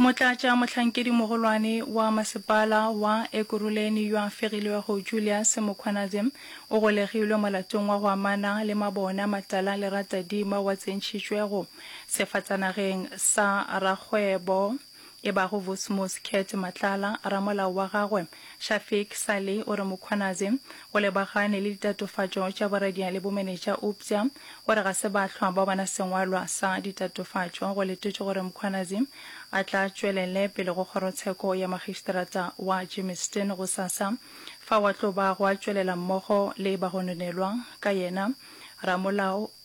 Motlatša mohlankedi-mogolwane wa masepala wa Ekurhuleni yo a fegilwego Julius Mukhwanadze o golegilwe molatong wa go amana le mabona matala le ratadima wa tsentšhitšwego sefatsanageng sa rakgwebo e bago Vusmus Cat Matlala, ramolao wa gagwe, Shafiq Sali o re Mukhwanazi o lebagane le ditatofatšo tša boradia le bomenetša eupša o re ga se bahlwa ba bona sengwalwa sa ditatofatšo. Go letetšwe gore Mukhwanazi a tla tšwelele pele go kgorotsheko ya makgišterata wa Germiston gosasa fao a tlo ba go a tšwelela mmogo le bagononelwa ka yena ramolao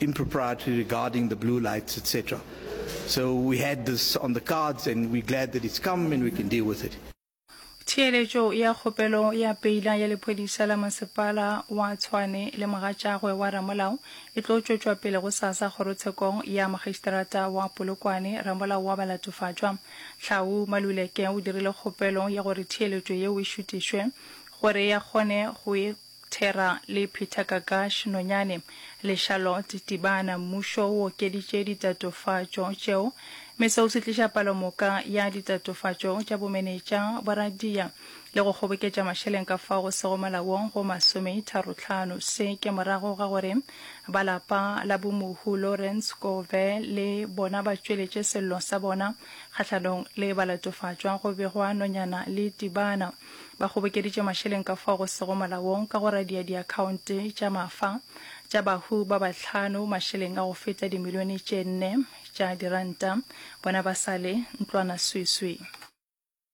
impropriety regarding the blue lights, etc. So we had this on the cards and we're glad that it's come and we can deal with it. Theeletšo ya kgopelo ya peila ya lephodisa la masepala wa Tshwane le mogatšagwe wa ramolao e tlo tšwetšwa pele gosasa kgorotshekong ya makgistrata wa Polokwane. Ramolao wa ba latofatšwa, Tlhau Maluleke o dirile kgopelo ya gore theeletšo yeo e šutišwe gore ya kgone go e Thera le Peter Gagash, Nonyane, le Charlotte Tibana, Mmušo o okeditše ditatofatšo tšeo, mme seo se tliša palomoka ya ditatofatšo tša bomenetša, boradia, le go kgoboketša mašeleng ka fao go sego molaong go masometharotlhano. Se ke morago ga gore ba lapa la bomohu Lawrence Gove le bona ba tšweletše sello sa bona kgahlanong le balatofatšwa go begwa Nonyana le Tibana. Ba kgobokeditše mašeleng ka fao go sego molaong ka go radia diakhaonte tša mafa tša bahu ba bahlano mašeleng a go feta dimilione tše nne tša diranta bona ba sa le ntlwana sweswi.